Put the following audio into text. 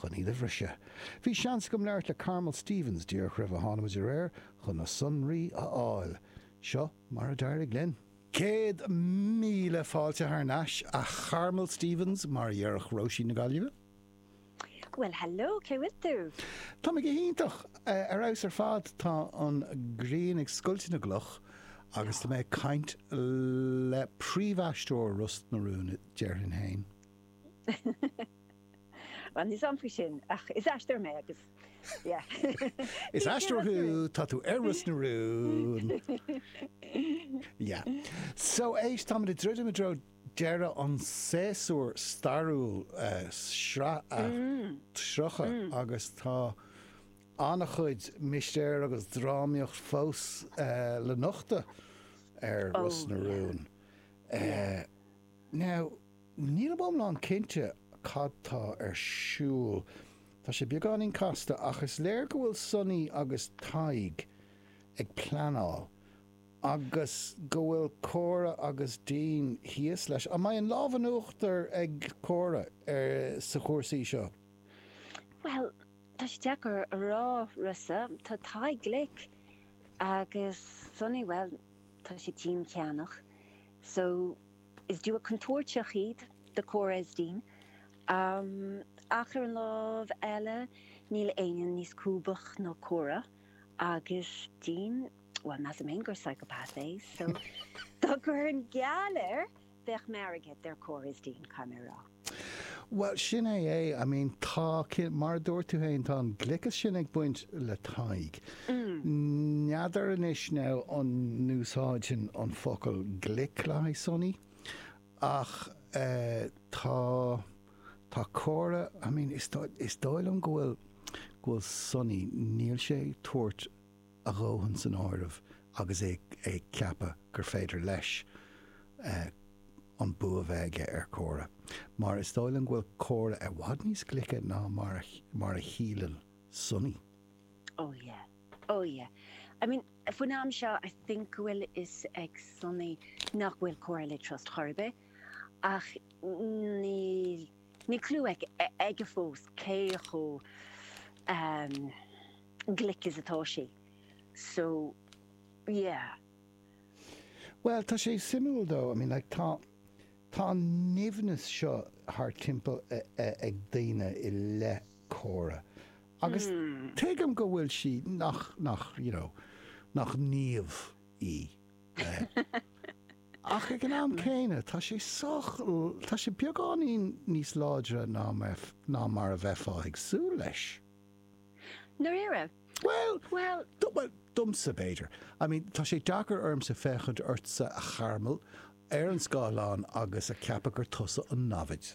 chun iad a bhriseadh. Bhí seans agam labhairt le Carmel Stephens díreach roimh a thánamar ar aer chun na sonraí a fháil. Seo mar a d'éirigh linn. Céad míle fáilte thar n-ais, a Charmel Stephens, mar a dhéarfadh Róise na Gaillimhe. Bhuel, hello, cén chaoi a bhfuil tú? Tá mé go hiontach, ar fheabhas ar fad. Tá an ghrian ag scoilteadh na gcloch agus tá mé ag caint le príomhaisteoir Ros na Rún, déarfainn féin. Bhuel, níl a fhios agam faoi sin, ach is aisteoir mé agus yeah. Is aisteoir thú, tá tú ar Ros na Rún. Yeah. So éist, táimid ag druidim i dtreo deireadh an tséasúir stairiúil, sraith a 30, agus tá an-chuid mistéir agus drámaíocht fós le nochtadh ar Ros na Rún. Now, Nílim iomlán cinnte cad tá ar siúl. Tá sé beagáinín casta, ach is léir go bhfuil Sonaí agus Tadhg ag pleanáil, agus go bhfuil Córa agus Dean thíos leis. An mbeidh an lámh in uachtar ag Córa ar sa chúrsaí seo? Bhuel, tá sé deacair a rá, Rossa. Tá Tadhg glic, agus Sonaí, bhuel, tá sé díoltasach, so. Is duo contúirteach iad do Cora is Dean, ach ar an lámh eile níl éinne níos lúbaí ná Cora agus Dean, bhuel measaim fhéin gur psychopath é, so dá gcuirfinn geall air bheadh m'airgead ar Cora is Dean, caithfidh mé a rá. Bhuel, sin é é. I mean, tá, mar a dúirt tú féin, tá an gliocas sin ag baint le Tadhg. N'fheadar anois now an n-úsáidfinn an focal glic le haghaidh Sonny ach eh tá, tá Cora, I mean, is dóigh, is dóigh liom go bhfuil, go bhfuil Sonny, níl sé ag tabhairt, a dhóthain san áireamh agus é ag ceapadh gur féidir leis an bua bheith aige ar Cora, mar is dóigh liom go bhfuil Cora i bhfad níos glice ná mar a shíleann Sonny. Oh yeah, oh yeah. I mean, faoin am seo I think go bhfuil fhios ag Sonny nach bhfuil Cora le trust chor ar bith, ach níl clú aige fós cé chomh. glic is atá sí. So, yeah. Bhuel, tá sé suimiúil though, I mean like tá, tá an nimhneas seo thar timpeall ag daoine i leith Cora agus tuigim go bhfuil sí nach, nach, you know, nach naomh í. Ach ag an am céanna, tá sé sách, tá sé beagáinín níos láidre ná mar a bheifeá ag súil leis. ndáiríre? Bhuel. Bhuel. Bhuel, domsa, b'fhéidir. I mean, tá sé deacair ormsa féachaint ortsa, a Charmel, ar an scáileán agus a cheapadh gur tusa an namhaid.